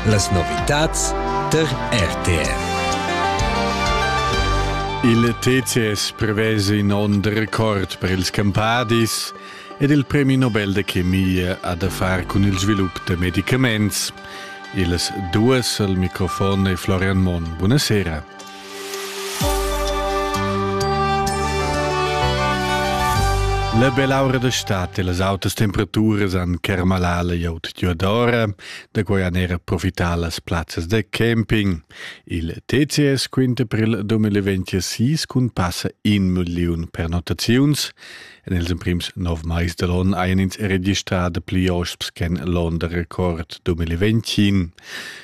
Las novitads tar RTR. Il TCS prevesa in onn de record per ils campadis ed il premi Nobel de chemia ha da far cun il svilup de medicaments. Ils duas al microfon e Florian Monn. Buonasera. La belaura da stat e las autas temperaturas han kermalà la iot Diodora, da quai han era profità las plazzas da camping. Il TCS quinta per il 2026 cun passa in million pernottaziuns En ils emprims nov mais da l'onn hajan ins registrà dapli osps ch'en l'onn da record 2020.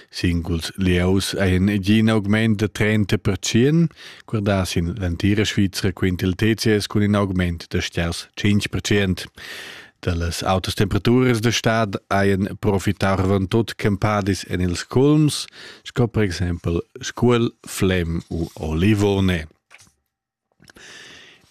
Singuls lieus hajan gì in augment da 30 percent, guardà sin l'entira Svizra quint il TCS cun in augment da sters 5 percent. Da las autas temperaturas da stad hajan profitar van tut campadis en ils culms, sco per exempel Scuol, Flem u Olivone.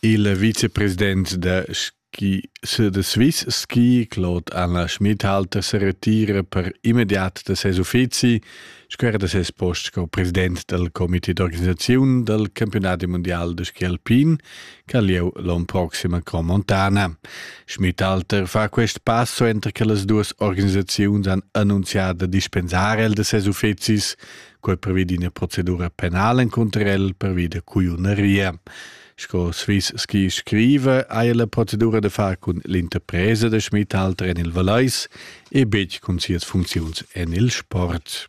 Il vicepresident da ski da Swiss Ski Claude Anna Schmidhalter sa retira per immediat da ses uffizi sco era da ses post sco president dal comité d'organisaziun dal campiunadi mundial da ski alpin ch'ha lieu l'onn proxim a Cromontana. Schmidhalter fa quest passo entras che las duas organisaziuns han annunzià da dispensar el da ses uffizis Quei prevedi ina procedura penal encunter el, prevedi cuiuneria. Sco Swiss ski scriva, ha la procedura da far cun l'interpresa da Schmitthalter en il Valais e betg cun sias funcziuns en il sport.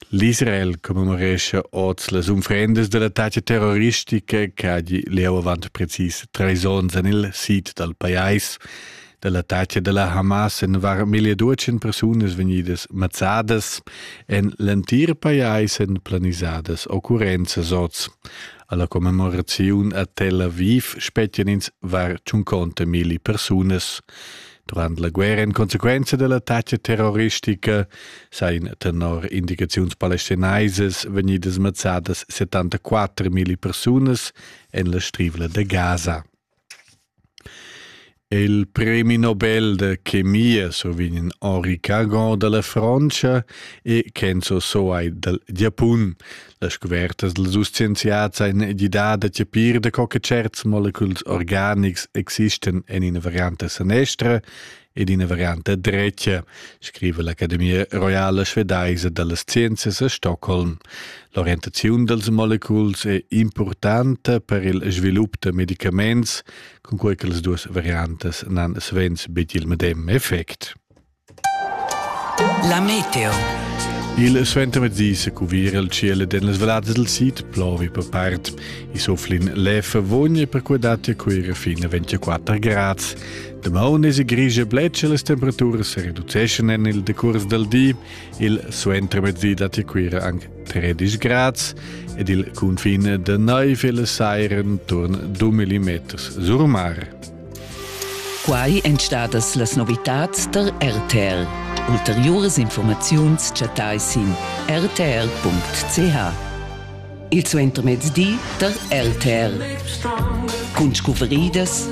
L'Israel commemorescha oz las unfrendas dell'attacca terroristica che ha lieu avant precis trais onns en il sid dal pajais dell'attacca della Hamas en var 1200 personas venidas mazzadas en l'entir pajais en planisadas occurrenzas oz. Alla commemorazione a Tel Aviv spettian ins var 50.000 personas. Durant la guerra in conseguenza dell'attacca terroristica seien tenor indicaziuns palestinaisas venidas mazzadas 74.000 personas en la strivla de Gaza. Il premi Nobel da chemia survegn Henri Cagon dalla Frontscha e Kenzo Soai dal Giapun. Las scuvertas dals dus scienziads ein gidà da chapir da co che certs moleculs organics existan en ina varianta sanestra ed ina varianta dretga, scriva l'Academia Royala Svedaisa dallas Scienzias a Stockholm. L'orientaziun dals moleculs è importanta per il svilup da medicaments, cun quei che las duas variantas nan svens bet il medem effect. La meteo. Il suentermezzis cuvira il cielo den las vallades del sid plovi per part. I soflin lef vogni per quei dati a quira fin a 24 grads. Damaun esi grigia bletscha las temperaturas e reduceschan en il decurs dal di. Il suentermezdi dat Cuira anche 13 grads ed il confin da naiv e la saira intorno a 2 mm sur mare. Quai èn stadas las novitads tar RTL. Ulteriuras informaziuns chattai sin rtr.ch. Il suentermezdi tar RTL. Cun scuvridas